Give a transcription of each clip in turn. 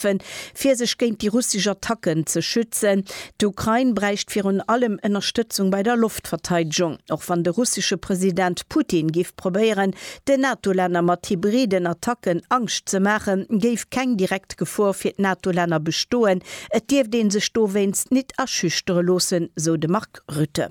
schaffen, fir sech géint déi russesch Attacken ze schützen. D'Ukrain bräicht virun allem Ënnerstëtzung bei der Loftverteidegung, och wann de russesche President Putin géif probéieren, den NATO-Länner mat hybriden Attacken Angscht ze maachen, géif keng direkt Gefor fir d'NATO-Länner bestoen. Et dierft ee sech dowéinst nit aschüchtere loossen, sou de Mark Rutte.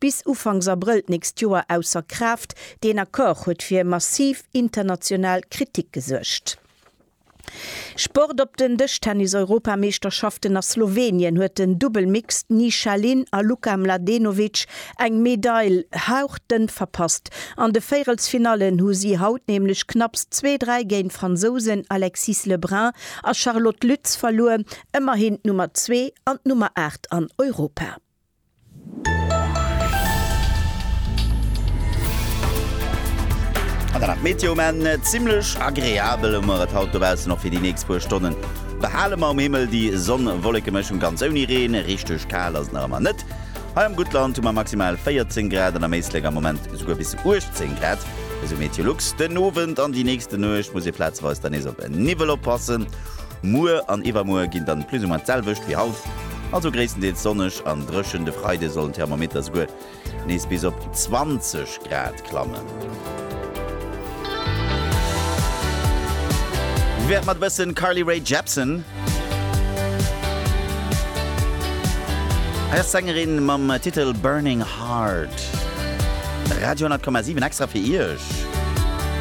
bis Ufanks Abrëll d'nächst Joer ausser Kraaft. Deen Accord huet fir massiv international Kritik gesuergt. Sport Op den Dëschtennis-Europameeschterschaften a Slowenien huet den Dubbel Mixed Nišalin a Luka Mladenovic eng Medail hauchdënn verpasst. An de Véierelsfinallen hu si haut nämlech knapps zwee, dräi géint d'Fransousen Alexis Le Brun a Charlotte Lütz verluer, ëmmerhin d'Nummer zwee an d'Nummer aacht an Europa. An dann nach d'Meteo, Mä zimmlech agreabel hu mer et haut dobaussen, och fir déi nächst puer Stonnen. Behale mer um Himmel déi Sonn-Wolleke-Mëschung, ganz ouni Reen. Richteg kal ass et nach ëmmer net. Hei am Guttland hu mer maximal 14 Grad an am Éislek am Moment esouguer bis 18 Grad, esou Meteolux. Den Owend an déi nächste Nuecht muss ee plazeweis dann nees op Niwwel oppassen. Muer an iwwermuer ginn dann plus ou moins d'selwecht wéi haut, also gréisstendeels sonneg an dréchen. De Freide soll den Thermometer souguer nees bis op 20 Grad klammen. Wéi wär et mat e bëssen Carly Rae Jepsen? Hei ass d'Sängerin mam Titel Burning Heart. Radio 10,7 extra fir Iech.